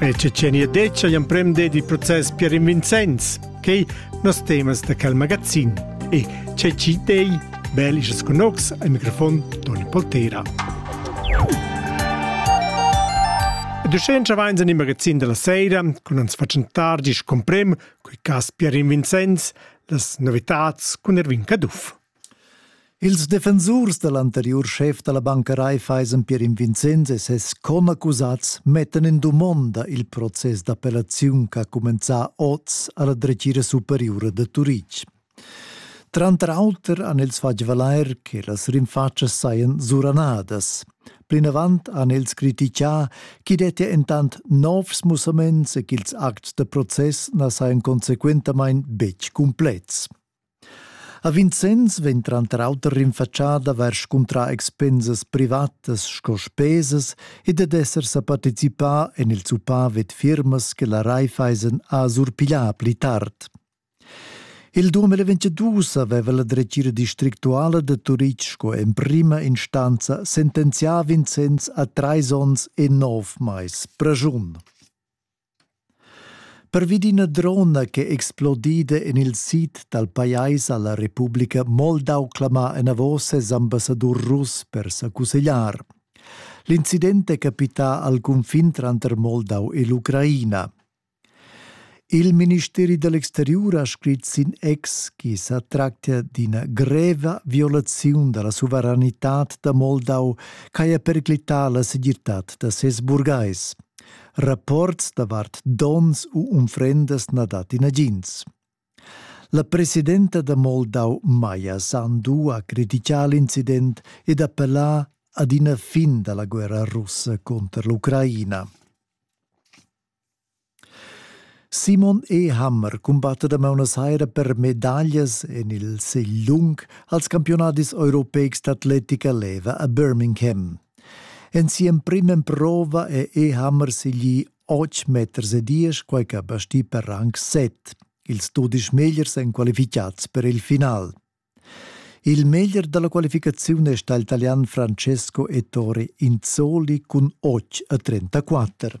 El Cecenia Deccia l'emprem ded il process Pierin Vincenz, quei nos temas da quel magazin. E Ceci Dei, bel isas con ox, al microfon Toni Poltera. Duschentscha vains in il magazin della sera con uns facentar gis comprem coi cas Pierin Vincenz, las novitats con Erwin Caduff. Ils defensurs da l'anteriur schef da la Banca Raiffeisen Pierin Vincenz e ses conaccusats mettan en dumonda il process d'appellaziun ch'ha cumenzà oz a la dretgira superiura da Turitg. Tranter auter han els fatg valair che las rinfatschas sajan suranadas. Plinavant han els critichà ch'i dettia entant novs mussaments e ch'ils acts da process na sajan consequentamain betg cumplets. A Vincenz vegn tranter auter rinfatschada vers scuntrar expensas privatas sco spesas ed ed esser sa participà en il zuppà vid firmas che la Raiffeisen ha surpiglià pli tard. Il 2022 aveva la dretgira districtuala da Turitg sco emprima instanza sentenzià Vincenz a trais onns e nov mais preschun. Pervi d'ina drona ch'è explodida en il sid dal pajais ha la Republica Moldau clamà enavos ses ambassadur russ per sa cussegliar. L'incident è capità al cunfin tranter Moldau e l'Ucraina. Il ministeri dell'exterior ha scrit sin ex che sa tractia d'ina greva violaziun della suveranità da Moldau ch'haja periclità la segirtad da ses burgais. rapports davart dons u unfrendas na dat nagins. La presidenta da Moldau Maja Sandu ha criticà l'incident ed appellà ad ina fin dalla guerra russa contro l'Ucraina. Simon E. Hammer combatte da Buenos Aires per medaglie en il Seilung als campionati europeics d'atletica leva a Birmingham. En si'emprima emprova è Ehammer segli otg meters e diesch, quai che basti per rang set. Ils dudisch megliers èn qualificads per il final. Il meglier dalla qualificaziun è stà il Italian Francesco Ettore Inzoli cun 8 a 34.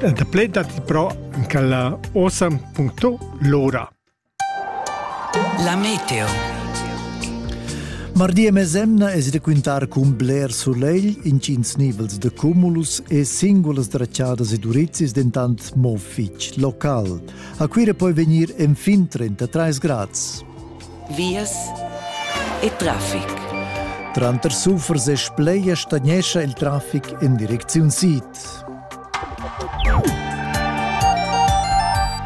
El daplè datti però anche la awesome.lora. La meteo. Mardi mesemna es raquintar cun bler solegl, intgins nivels de cumulus e singulas dracciadas e durizis dentant mo fitg local. A Cuira poi venir enfin 33 grads. Vias e traffic. Tranter Sufers e Spleia stagnescha il traffic in direcziun sid.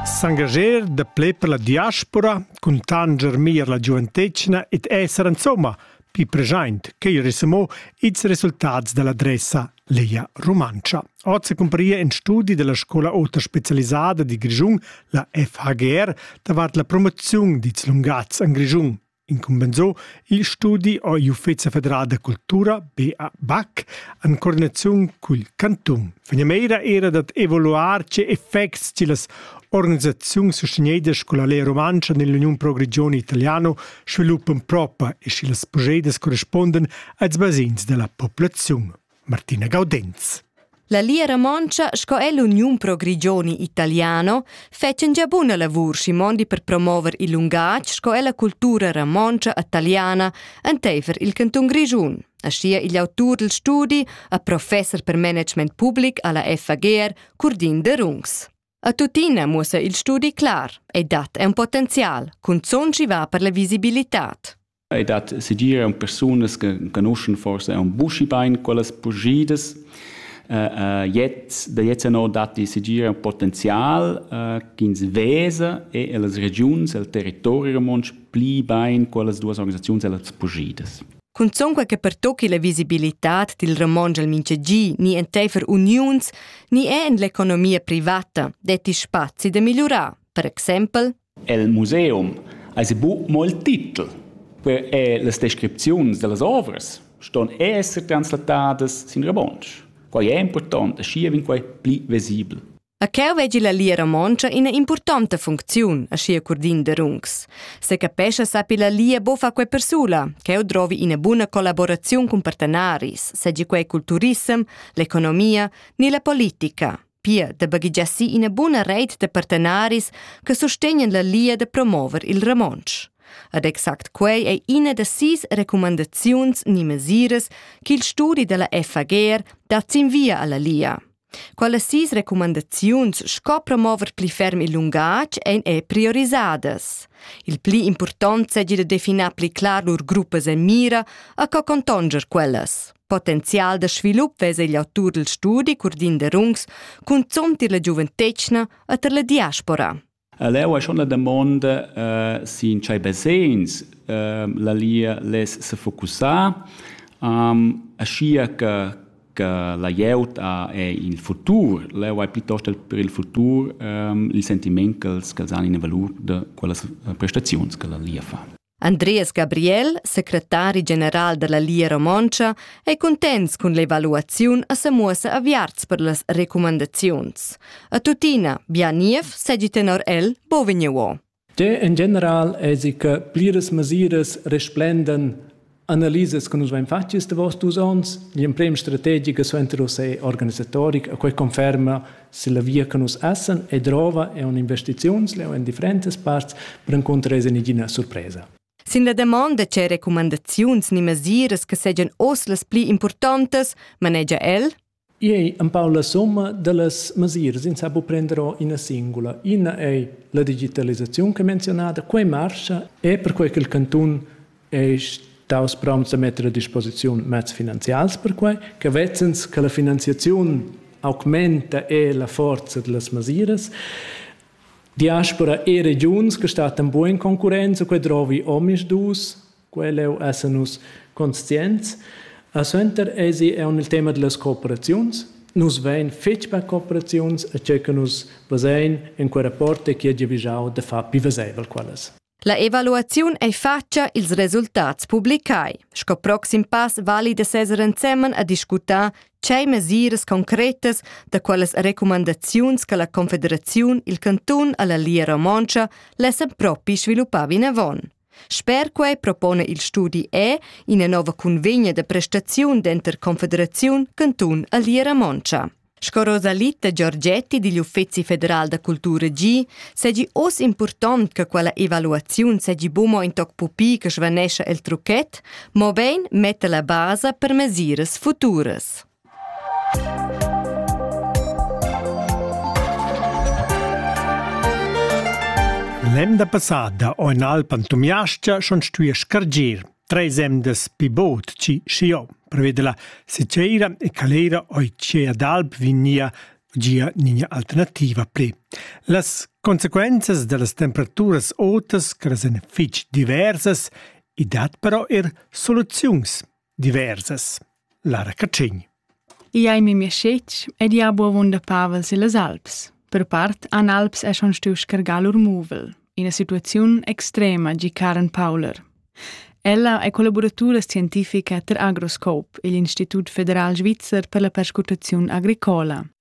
S'engager da ple per la diaspora cun tanger meglier la giuventetgna ed esser insomma pli present che mo ils resultats dall'adressa Leia Rumantscha. Oz se comparia in studi della scola ota specialisada di Grischun, la FHGR, davart la promozione dits lungats en Grischun. Incumbensò il studi ò l'Uffeza federal da cultura BAC en coordinaziun cul cantun. Finamira era dad evaluar tge effects che las organisaziuns sustegneidas con la Lea Rumantscha nell'Union Pro Regione Italiano sviluppan propa e sche las progedas corresponden als basins della populaziun. Martina Gaudenz. La Lia Romontscha sco è l'Uniun pro Grigioni italiano fetschen gia buna lavur si mondi per promover il lungatg sco è la cultura romontscha italiana enteifer il canton Grigiun. Aschia igl autur dil studi a professor per management public alla FAGR, Curdin de Rungs. A tuttina muossa il studi clar e dat è un potenzial, cun zon ci va per la visibilità. ei dat segir aunc persunas che conoschan forse aunc buschi bein quellas purschidas. Uh, uh, jetzt, da jetzt no datti segir un potenzial uh, ch'ins vesa e las regiuns, el territori romontsch pli bein quellas duas organisaziuns e las purschidas. Cunzonque che pertocchi la visibilitad dil Ramon al mintgegi ni enteifer uniuns, ni è en l'economia privata detti spazi da migliurar. Per exempel El museum ais bu molt titel, per e las descripziuns da las ovras ston esser translatadas sin romontsch. Quai è important e schi vegn quai pli vesibel. A cheu vegi la lia romontscha ina importanta funcziun, aschia Curdin de Rungs. Se capescha sapi la lia bofa quei persula, cheu drovi ina buna collaboraziun cun partenaris, segi quei culturissem, l'economia ni la politica. pia da baghegiassir ina buna reit da partenaris che sustegnan la lia da promover il romontsch. Ed exact quei ei ina da sis recumandaziuns ni mesiras ch'il studi dalla FAGR dat sin via alla lia. Quelle sis recumandaziuns sco promover pli ferm il lungatg ein e priorisadas. Il pli impurtont seigi da definar pli clar lur gruppas e mira a co contonger quellas. Potenzial da svilup vesa igl autur dil studi Curdin Derungs cunzont ir la giuventetgna e tar la diaspora. Leu è schon la domanda uh, sin tschei basegns uh, la lia les se focussar um, aschia che che la glieud ha è il futur. Leu è piuttosto per il futur um, il sentiment che els han in valur de quella prestazioni che la lia fa. Andreas Gabriel, secretari general dalla Lia Romontscha, ei cuntents cun l'evaluaziun e semuossa aviarts per las recumandaziuns. A tuttina, bia niev segi tenor el bovigneuo. De in general esi che pliras mesiras resplenden Analisas che nus vein fatg ils davos dus onns, l'emprema strategica suenter uss è organisatoric, e quei conferma se la via che nus essen e drova è un'investiziuns, leo en differentas parts, per incontrar es in igina surpresa. Sin la demanda c'è recumandaziuns ni mesiras che segian oz las pli importantas, manegia el. I ei empau la summa dallas mesiras, ins ha buca prender ora ina singula. Ina ei la digitalisaziun che menzionada, quei marscha e perquei che il cantun ei staus promts da metter a disposiziun mezs finanzials per quei, che vezzens che la finanziaziun augmenta e la forza dallas mesiras. Diaspora e regiuns che stattan buca in concurrenza, quei drovi omisdus Quell'eu esa nus conscients. E suenter esi eau nel tema dellas cooperaziuns. Nus vain fich per cooperaziuns e che che nus vezain in quel rapport è chi ha giavüschau da far pü vezaivel quellas. La evaluaziun ei fatscha ils resultats publicai. Sco proxim pass vali da seser ensemen a discutar tgei mesiras concretas da quellas recumandaziuns che la Confederaziun il cantun alla Lia Romontscha lessa propi sviluppar vinavon. Sper quei propona il studi E ina nova cunvegna da prestaziun denter Confederaziun, cantun e Liera Montscha. Sco Rosalitta Giorgetti digl Uffeci federal da cultura gi, segi oz impurtont che quella evaluaziun segi buca in toc pupi che svanescha el trucchet, mobein metta la basa per mesiras futuras. L'emda passada ho in Alpan Tumiascha schon stuì scargir treis emdas pi bod chi schiò, preveda la Seceira e Calera oi chia d'alp vignia gia nina alternativa pli. Las consequenzas da las temperaturas otas, che las èn fitg diversas, i dat però er soluziuns. diversas. Lara Catschign. I ei memia scetg ed ia bu avunda pavel se las Alps. Per part an Alps è schon stu scargar lur muvel, ina situaziun extrema gi Karen Pauler. Ella è collaboratura scientifica ter Agroscope, il Institut federal svizzer per la perscrutaziun agricola.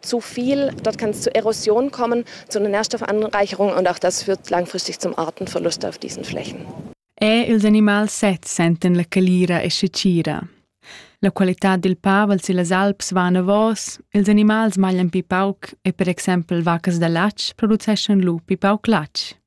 zu viel. Dort kann es zu Erosion kommen, zu einer Nährstoffanreicherung und auch das führt langfristig zum Artenverlust auf diesen Flächen. E ils animals sezs sentan la calira e scecira. La qualità dil pavel sillas alps va anavos, ils animals maglian pi pauc e per exempel vacas da latg produceschan lu pi pauc latg.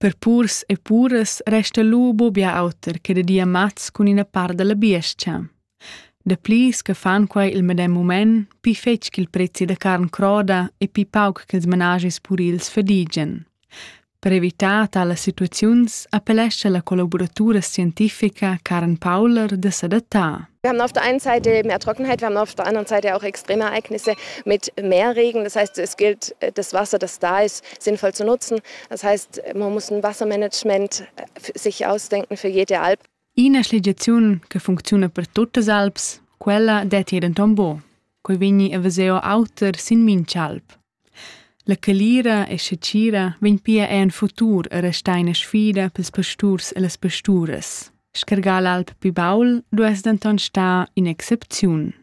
Per purs e puras resta lu buca auter che da dir mats cun ina part dalla biestga. Dapli che fan quei il medem mument, pli fetg ch'il prezi da carn croda e pli pauc ch'ils menages purils fadigen. Per evitar talas situaziuns appellescha la collaboratura scientifica Karen Pauler da s'adattar. Wir haben auf der einen Seite mehr Trockenheit, wir haben auf der anderen Seite auch extreme Ereignisse mit mehr Regen. Das heißt, es gilt, das Wasser, das da ist, sinnvoll zu nutzen. Das heißt, man muss ein Wassermanagement sich ausdenken für jede Alp. Ina schligiaziun che funcziona per tuttas Alps, quella detti denton bo. Coi vegni a veseo auter sin minch'alp. La calira e scecira vegn pia en futur a restar ina sfida pels pasturs e las pasturas. Scargar l'alp pi baul duess denton star in excepziun.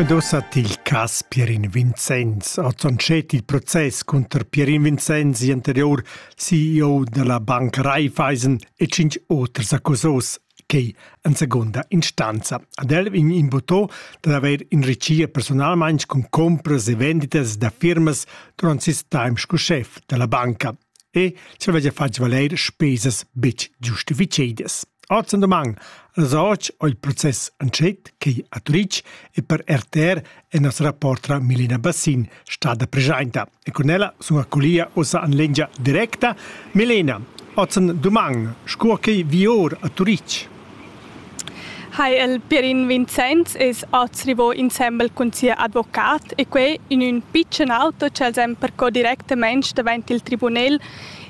Ed ussa til cas Pierin Vincenz ha tschonschet il process cunter Pierin Vincenz, anterior CEO della bank Raiffeisen e cinc oters accusos che en seconda instanza. Ad el vegn invotò dad haver enrichia personalmain con compras e venditas da firmas durant ses temps sco chef della banca. e cha vaiva fat valair spesas betg giustifichadas. Hoz in doman as hoc ho il process entschet, quai a Turitg e per RTR è nostra reportra Milena Bassin stada preschainta. E con ella sun accolia ussa an lengia directa. Milena, hoz in doman, sco che vi or a Turitg. ha el Pierin Vincenz es hoz rivò insembel cun sia advocat e quai in ün pitschen auto ch'els han percò directamaing davant il tribunel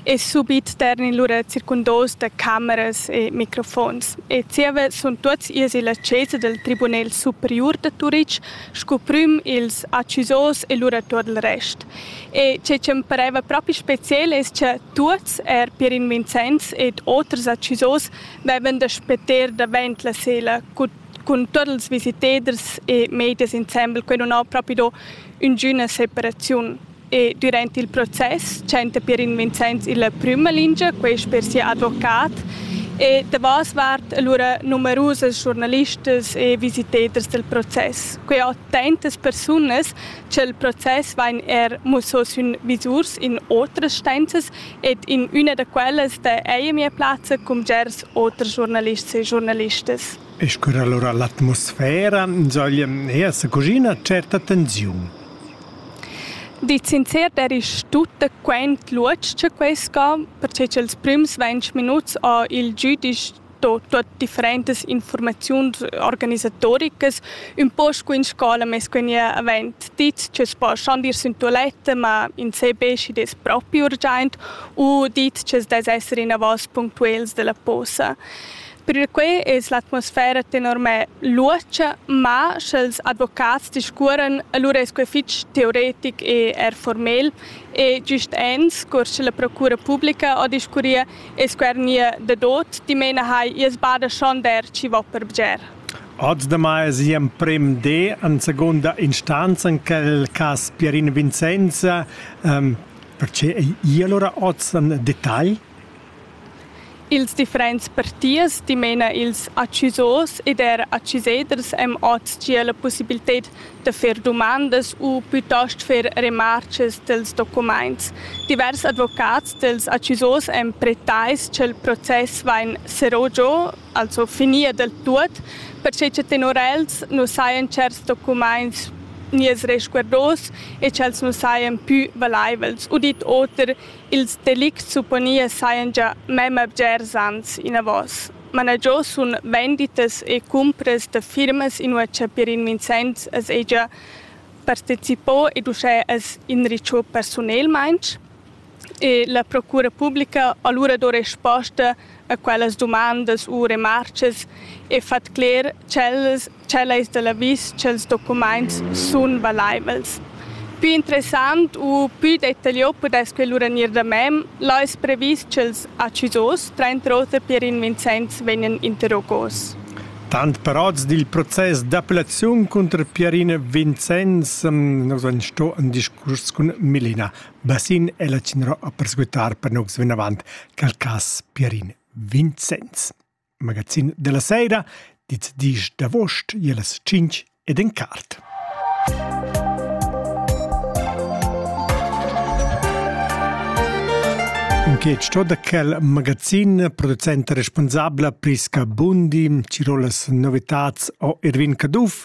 e subit ternin lura circundos da cameras e microfons. E zieva sun tuots ies illa chesa dal Tribunel superiur da Turich scu prüm ils accusos e lura tuot il rest. E che chi'm pareva propi speciel es cha tuots, er Pierin Vincenz ed oters accusos, Baivan da spetter davent la sela cun, cun tuot ils visiteders e medias insembel, quai nun ha propi do üngüna separaziun. E durant il process chanta Pierin Vincenz illa prüma lingia, quest per sia advocat, e davos vart alura numerusas schurnalistas e visiteders del process. Quai ho tantas persunas cha'l process vain er musso sün visurs in otras stanzas Ed in üna da quellas dà eir mia plazza cun bgers oters giurnalists e giurnalistas. E sgür allura l'atmosfera insoglia eir sa cuschina tscherta tensiun. Di sincer der ich tutta quent luotsch cha quai sca, perche cha'ls prüms ventg minuts ho il giüdisch tuot differentas infurmaziuns organisatoricas, ün po scu in scola, mes que gnè avent dit ch'els poschan ir sün tualetta, ma in se be schi dess propi urgiaint u dit ch'els dess esser inavos punctuels da la posa. Perquai es l'atmosfera tenor me luotscha, ma sch'els advocats discuoran, alura es que fich teoretic e eir formel e gist ens, cur cha la procura publica ho discurrieu, e squernir da dot, dimena hai ies bada schon der chi vo per bger. Oz damai es emprem D in seconda instanza in quel cas Pierin Vincenza. Ähm, perché è i allora oz in dettagl? Ils differents partiers, dimena ils accisos ed er acciseders, am oz gia la possibilità da fer dumandas u plitost fer remartgas dels documaints. Divers advocats dels accusos èn pretais cha'l process vain serrò giò, also finir del tuot, perche cha tenor els nu sajan tscherts documaints gniers resguardos e ch'els nu sajan pü valaivels. Udit oter, ils delicts supponian sajan già memma bgers ans inavos. managiò sun venditas e cumpras da firmas inua cha Pierin Vincenz as hegia partecipò ed uschè as inrichò persunelmaing e la procura publica alura do resposta a quellas dumandas u remarchas e fat cler ch'ellas Tschel ais da l'avis ch'els documaints sun valaivels. Pü interessant u pü detagliò pudess que lura gnir da mem, là es previs ch'els accisos, trainter oter Pierin Vincenz, vegnan interrogos. Tant parots dil process d'appellaziun cunter Pierina Vincenz nus han sto in discurs cun Milena Bassin e la Cinro a perscutar per nus vinavant quel cas Pierin Vincenz. Magazin della sera, dit disch d'avost ie las cinc ed en cart. Che sto da quel magazin producente responsabla Prisca Bundi, Tirolas Novitats o Erwin Caduff